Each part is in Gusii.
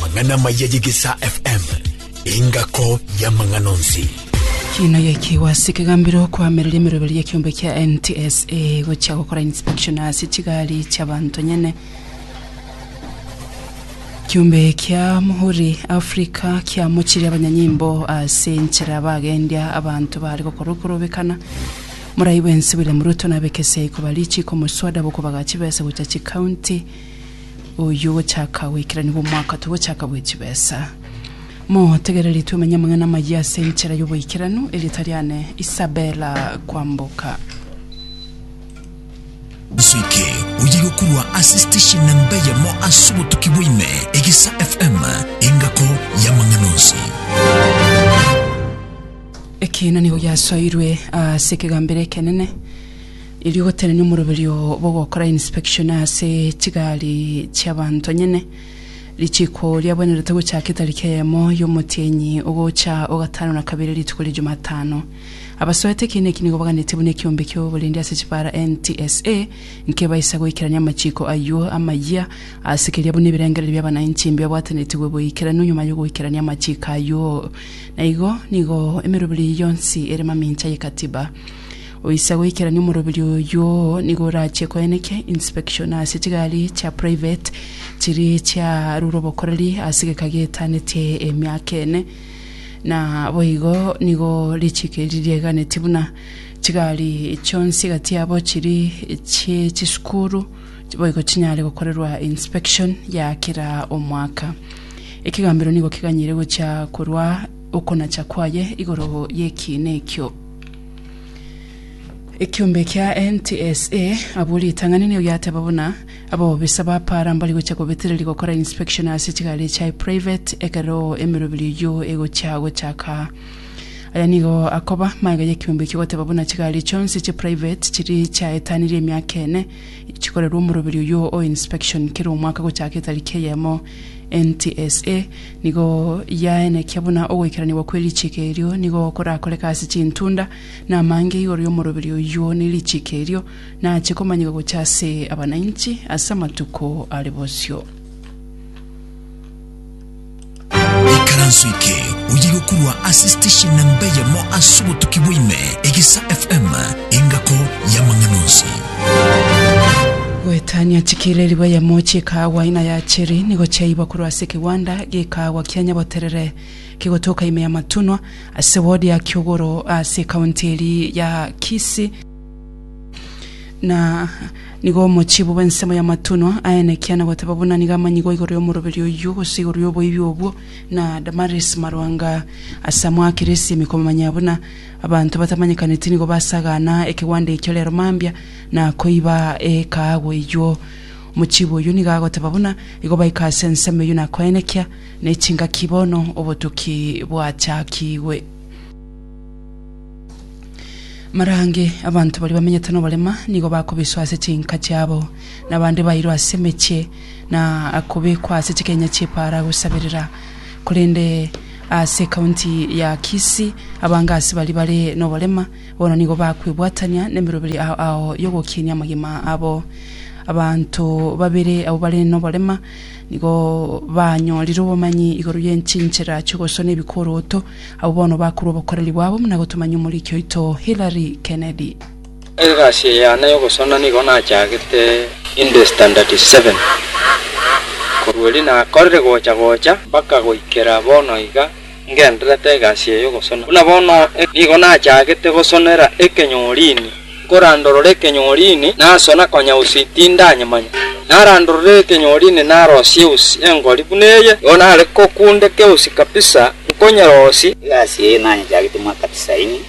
Mang'ana amaya y'Egesaa FM, engako y'amang'ana onsi. Kina gekiwa ase ekegambero okoamerera emeroberi y'ekiombe kia NTSA gochia gokora inspection ase chigari chiabanto nyene kiombe kia Muhuri Africa kiamochire abanyanyimbo ase enchera bagendia abanto bari gokora okorobekana morai bwensi William Ruto nabekese ikobarichi komoswada bokobagachi bese gocha chikaunti Oyio ogochaka goikeranigwa omwaka togochaka bwe chibesa. Motegereri twemenye amang'ana amayia ase enchera y'oboikeranu. Erieta riane Isabella Kwamboka. Nso eke oye gokurwa ase station na mbe yamo ase obotuki bwaime egesa FM engako yamang'ana onsi. Ekina nigo giasoirwe ase ekegambero ekenene. Erio gotenenia omoroberi oo bogokora inspection ase chigari chi'abanto nyene, richiiko riabwenerete gochaaka etariki eyemo y'omotienyi ogocha o gatano na kabere rituko ria Jumatano. Abasoete ekiina eki nigo baganetie buna ekiombe ki'oborindi ase chipaara NTSA nkebaisa goikerania amachiiko ayio amayia ase keria buna ebirengererio bi'abanainchi mbibabwatenetigwe boikeranu nyuma y'ogoikerania amachiiko ayio. Naigo nigo emeroberi yonsi ere mamincha y'ekatiba. Oise goikerania omoroberio oyio nigo orachie koeneke inspection ase chigari chia private chiri chiarure obokoreri ase egeka getanetie emiaka ene. Na boigo nigo richike ririegananetie buna chigari chionsi gati yabo chiri chie chisukuru boigo chinyare gokorerwa inspection ya kera omwaka. Ekegambero nigo keganyire gochia korwa okonacha kwaye igoro y'ekiina ekio. Ekiombe kia NTSA, abwo ritang'ani nigo giateba buna abobisa ba para mbari gocha kobetereria gokora inspection ase chigari echi ai private ekero emeroberi eyio egochia gochaka. Aya nigo akoba magega y'ekiombe ekio goteba buna chigari chionsi chi private chiri chiaetanirie emiaka ene chikorerwa omoroberi oyio o inspection kera omwaka gochaka etariki eyemo NTSA, nigo yaenekia buna ogoikeranigwa kwe richiko erio nigo korakoreke ase chintunda, na amange igoro y'omoroberi oyio ne richiko erio nache komanyigwa gocha ase abanainchi ase amatuko are bosio. Ikaranso eke oye gokurwa ase station namba eyemo ase obotuki bwaime, Egesa FM, engako y'amang'ana onsi. Goetania chikira erigwa ya mochi ekaagwa ina ya cheri, nigo chiaiywa korwa ase ekegwanda gekaagwa kia Nyaboterere kegotoka ime ya Matunwa, ase ward ya Kiogoro ase ekaunti eria ya Kisii. Na nigo omochibi bw'ensemo ya Matunwa aenekia na goteba buna nigo amanyigo igoro y'omoroberi oyio, gose igoro y'oboibi obwo, na Damaris Marwanga ase amoakeresie ime komomanya buna Abanto batamanyekaneti nigo basagana ekegwanda ekio rero mambia, na koiba ekaagwa eyuo. Omochibi oyio nigo agoteba buna igo baika ase ensemo eyio na koenekia, ne chingaki bono obotuki bwachakigwe. Marange, abanto baria bamenyete noborema nigo bakobiswa ase chinka chiabo, na abande bairwe ase emechie, na kobekwa ase chikenya chi'epaara gosabirira. Korende Ase county ya Kisii, abangasi baria bare noborema bono nigo bakwebwatania nemeroberi ao ao yogokinia amagima abo. Abanto babere abwo bare noborema nigo banyorire obomanyi igoro y'enchinchera chi'ogosona ebikoroto, abwo bono bakorwa obokoreri bwabo buna gotomanya omoriki oito Hillary Kennedy. Egasi eye yane y'ogosona nigo nachagete inde standard seven, korwa erio nakorire gocha gocha mpaka goikera bono iga ngendererete egasi eye y'ogosona. Buna bono nigo nachagete gosonera ekenyorini, nkorandorora ekenyorini nasona konya usi tindanyemanya. Narandorora ekenyorini narosia usi engori buna eye, nigo nare kokundeka usi kabisa, nkonyerosia. Egasi eye nanyechagete mwaka tisaini.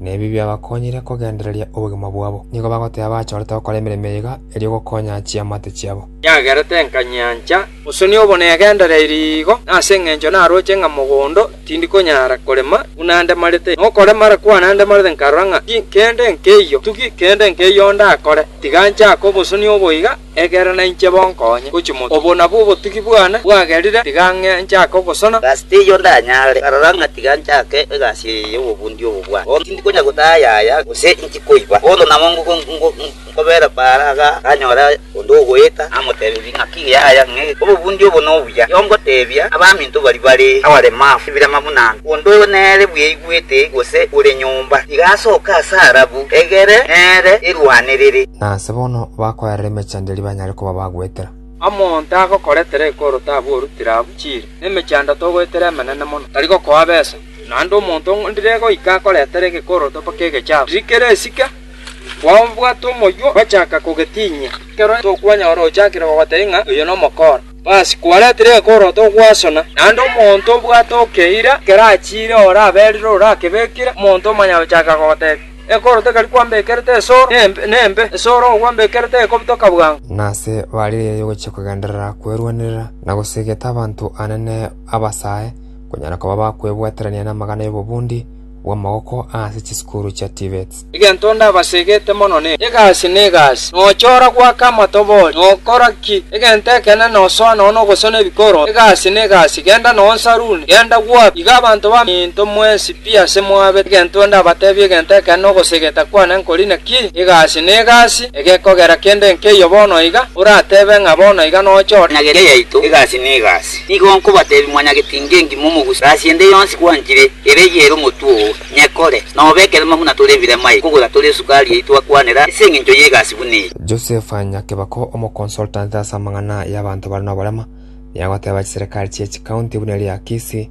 na ebi biabakonyire kogendereria obogima bwabo, nigo bagoteba bachorete gokora emeremo eyega erio gokonya chiamate chiabo. Yagerete nka nyancha, gose niobo negendereiri igo, na ase engencho naroche ng'a mogondo tindi konyara korema buna ndemarete, na okoremara kwane ndemarete nkarora ng'a ti kende nkeiyo, tugi kende nkeiyo ndakore, tiga nchake obosoni oboiga. Ekero nainche bo nkonye gochia moto. Obo nabwo obotugi bwane bwagerire, tiga ng'e nchake ogosona. Gasi teiyo ndanyare, karora ng'a tiga nchake egasi eye y'obobundi obo bwane. Bono tindi konya gotaa yaya, gose inchi koiba. Bono nabo nkobera Baara iga aganyora onde ogoeta, namotebirie ng'a ki yaya ng'e obobundi obo nobuya. Erio ngotebia abaminto baria bare abaremafu ebirema buna anga. Onde nere bweigwete gose ore nyomba, tiga asoke ase arabu, egere nere erwane rere. Nase bono bakoerera emechando eria banyare koba bagoetera. Omonto agokoretera ekoro tabua orutire abwo chiire, na emechando togoetera emenene mono tari gokoa besa. Naende omonto ndire goika akoretera egekoro toba k'egechafu, riria kere esike, kwao mbwate omoywo gochaka kogetinyia, ekero tokonyora ochakire kogotebia ng'a oyo nomokora. Basi, kwaretire egekoro togwasona. Naende omonto mbwate okeira, ekero achiire oraberire orakebekire, omonto omanyagochaka kogotebia. Enkoro tekari kwambekerete esoro, nembe, esoro ogwambekerete ekobitoka bwango. Nase barigererie gochia kogenderera kwerwanerera na gosegeta abanto anene abasae, konyara koba bakwebwaterania namagana y'obobundi bw'amagoko ase chisukuru chia Tvets. Egento ndabasegete mono ne egasi na egasi, nochora goaka amatobori, nokora ki? Egento ekenene nosoa nonya nogosona ebikoro, egasi na egasi, genda nonya saruni, genda gwapi? Iga abanto baminto mwensi. Pi ase mwabe egento ndabateebie egento ekeene gose egetakwane nkori naki egasi ne egasi egekogera kende nkeiyo bono iga, orateebe ng'a bono iga noche ore. Nyagera yaito egasi ne egasi. Nigo nkobateebia mwanyagetinga engima omogusi gasi ende yonsi gwanchire ere eyere omotwe oo, nyekore. Nobe ekerema buna tore ebirema iga kogora tore esukari yaito akwanera ase engencho y'egasi buna eye. Joseph Nyakebako, omoconsultant ase amang'ana y'abanto bare noborema, niye agoteeba chiserekari chie chikaunti buna eria Kisii,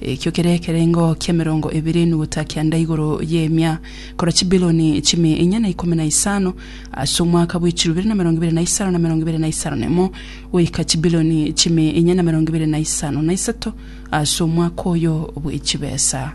Ekio kere ekerengo ki'emerongo ebere nugutaka kianda igoro y'emia, kora chibiloni chimia enya na ikomi na isano, ase omwaka bwe chirubere na emerongo ebere na isano na emerongo ebere na isano na emo, goika chibiloni chimia enya na emerongo ebere na isano na isato ase omwaka oyo bwe chibesa.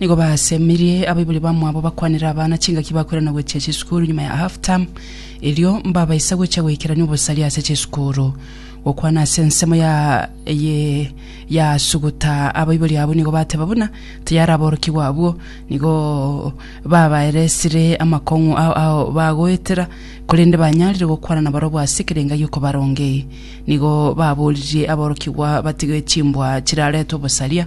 Nigo basemerie abaibori bamwabo bakwanere abana chingaki bakoirana gochia chisukuru nyuma ya half term, erio mbabaisa gochia goikerania obosaria ase chisukuru. Gokwana ase ensemo ya ye yasuguta abaibori abwo nigo bateba buna tayari aborokigwa abwo nigo babaeresire amakong'u ao ao bagoetera, korende banyarire gokwana nabarabwo ase ekero enga y'okobaronga eye. Nigo baboririe aborokigwa batige chimbwa chiraretwe obosaria,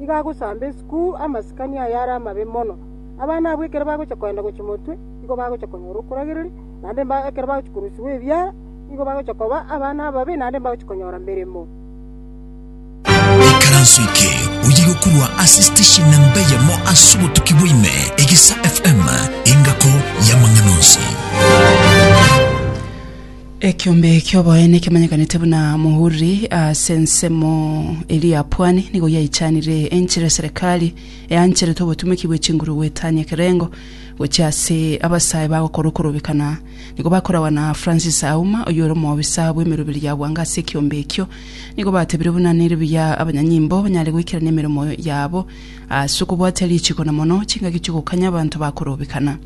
iga agosamba esukuu amasikani aye are amabe mono. Abana abwo ekero bagocha kogenda gochia motwe, igo bagocha konyora okoragereria, naende ekero bagochia korusigwa ebiara, nigo bagocha koba abana ababe, naende mbagochia konyora meremo. Ekaranso eke oye gokorwa ase station namba eyemo ase obotuki bwa ime, Egesa FM, engako y'amang'ana onsi. Ekeombe ki'oboene kemanyekanete buna Muhuri ase ensemo eria ya Pwani nigo yaichanire enchera eserekari eancherete obotumeki bwe chinguru goetania ekerengo gochia ase abasae bagokora okorobekana nigo bakoragwa na Francis Auma oyore omoobisa bw'emeroberi ya Bwanga ase ekeombe ekio nigo batebire buna nere buya abanyanyimbo banyare goikerania emeremo yabo ase okobwatia richiko na mono chingaki chi'ogokanya abanto bakorobekana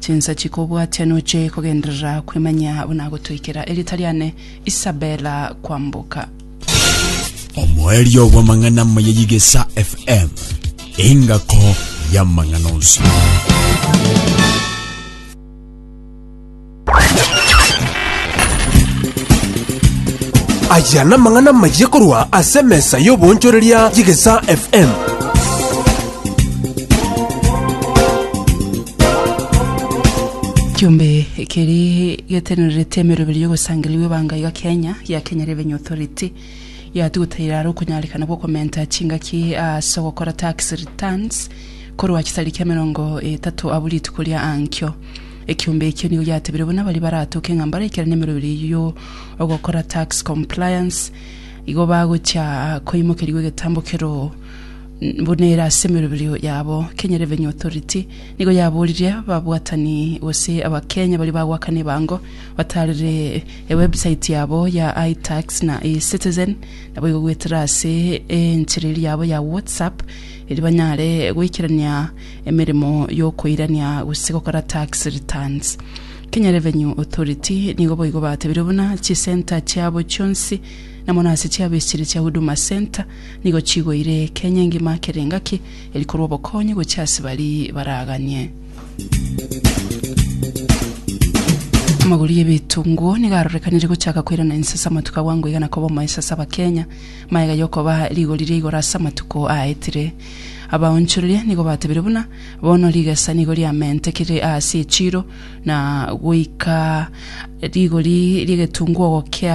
Chinsa chikobwatia noche kogenderera kwemanya abwo nagotoikera erieta riane Isabella kwamboka. Omoerio bw'amang'ana amaya y'Igesa FM, engako y'amang'ana onsi. Aya namang'ana amaya korwa ase emesa y'obonchoreria y'Igesa FM. Kiombe keri getenerete emeroberi y'ogosangeria bw'ebanga iga Kenya ya Kenya Revenue Authority yatugutaire aro okonyarekana gw'okomenta chingaki ase ogokora tax returns korwa chitariki emerongo etato abu rituko ria ankio. Ekiombe ekio nigo giatebire buna baria baratoke ng'a mbaraikere nemeroberi eyio yo ogokora tax compliance igo bagochia koimokerigwa egetambo keroo buna ere ase emeroberio yabo. Kenyerevenue Authority nigo yaboririe ababwatani gose Abakenya baria bagoakana ebango batarire ewebsite yabo ya iTax na eCitizen naboigo goetera ase enchera eria yabo ya WhatsApp erio banyare goikerania emeremo y'okoirania gose gokora tax returns. Kenya Revenue Authority nigo boigo batebirie buna chisenta chiabo chionsi na mono ase chiabo ase chiria chia Huduma Centre nigo chigoire Kenya engima akere engaki eri korwa obokonyi gochia ase bari baraganie. Amagori y'ebitunguo nigo arorekanire gochaka koirana ense ase amatuko abwango iga na koba omoeso ase Abakenya. Maega y'okoba rigori ria igoro ase amatuko aaetire. Abaonchoreria nigo batebire buna bono rigesa nigo riamentekire aase echiiro na goika rigori ri'egetunguo gokea